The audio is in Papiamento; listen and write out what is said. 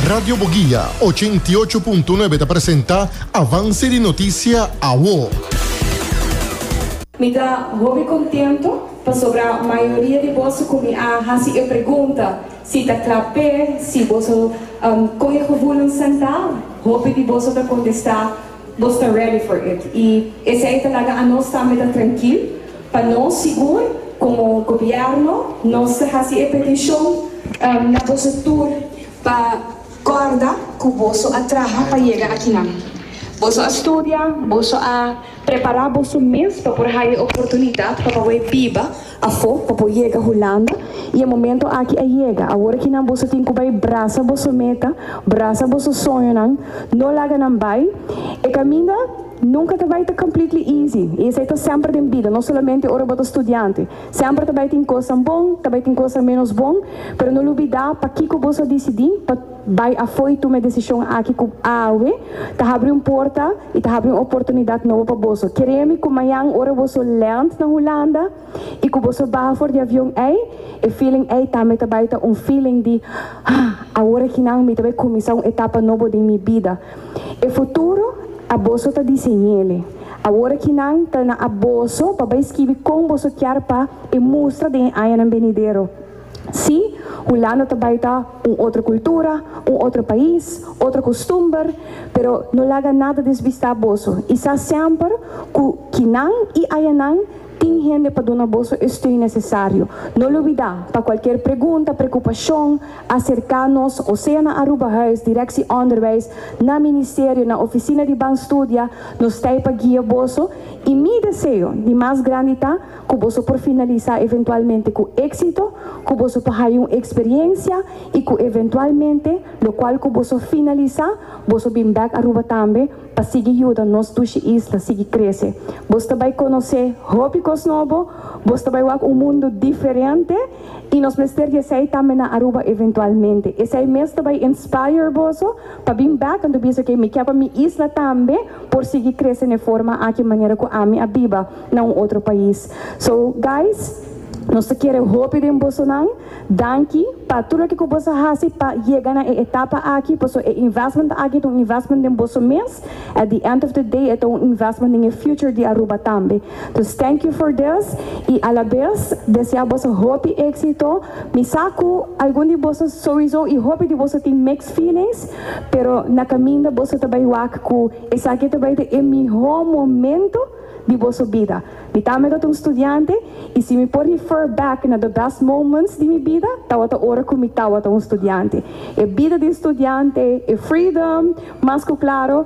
Radio Boguia, ochenta i ocho punto nuebe ta presenta Avance di Noticia Awo. Mi ta hopi contento pasobra mayoria di boso cu mi a haci e pregunta si ta cla p'e si boso coge gevoelen sentá, hopi di boso ta contestá, Nos ta ready for it y esey ta laga anos tambe ta trankil pa nos sigur como gobierno nos ta haci e peticion na boso tur pa corda cu boso a traha pa yega akinan. Boso a studia, boso a prepara boso mes pa por haya e oportunidad pa pawe biba Afo, pa por yega Hulanda, y e momento aki a yega. Awor aki nan boso tin cu bay brasa boso meta, brasa boso soñonan, no laga nan bay. E caminda nunca ta bay ta completely easy, y esey ta semper den bida, no solamente ora bo ta studiante. Semper ta bay tin cosnan bon, ta bay tin cosnan menos bon, pero no lubida pakico boso a dicidi pa. Bai afoi tuma e desishon aki ku awe ta habri un porta i ta habri un oportunidat nobo pa boso. Kereja mi ku mañan ora boso lènt na Hulanda i ku boso baha for di avion ei, e feeling ei tambe ta bai ta un feeling di, Hah, awor akinan mi ta bai kuminsá un etapa nobo den mi bida. E futuro a boso ta diseñ'ele. Awor akinan ta na a boso pa bai skibi kon boso kier pa e mustra den e añanan benidero. Sí, Hulanda ta bai ta un otro cultura, un otro pais, otro costumber, pero no laga nada desbista boso y sa semper cu kinan y ayanan tin hende pa duna boso e steun necesario. No lubida, pa cualkier pregunta, preocupacion, acerca nos o sea na Aruba Huis, Directie Onderwijs, na Ministerio, na Oficina di Ban Studia, nos t'ai pa guia boso y mi deseo di mas grandi ta, ku boso por finalisá eventualmente ku éksito, ku boso por haya un eksperiencia i ku eventualmente lokual ku boso finalisá boso bin bèk Aruba tambe pa sigui yuda nos dushi isla sigui krese. Boso ta bai konosé hopi kos nobo, boso ta bai wak un mundu diferente i nos mester di esei tambe na Aruba eventualmente. Esei mes ta bai inspire boso pa bin bèk anto bisa ke mi ke pa mi isla tambe por sigui krese n'e forma aki manera ku ami a biba. na un otro pais. So guys nos ta kere hopi den bosonan, danki pa tur loke ku bos a hasi pa yega na e etapa aki paso e investment aki ta un investment den boso mes, at the end of the day e ta un investment den e future di Aruba tambe. Dus thank you for this i a la bes desea boso hopi éxito. Mi sa ku algun di boso souizo i hopi di boso tin mixed feelings, pero na kaminda boso ta bai wak ku esaki ta bai ta e mihó momento, di boso bida. Mi ta amedat un studiante i si mi por refer back na the best moments di mi bida tawata ora ku mi tawata un studiante. E bida di un studiante, e freedom, mas ku klaro,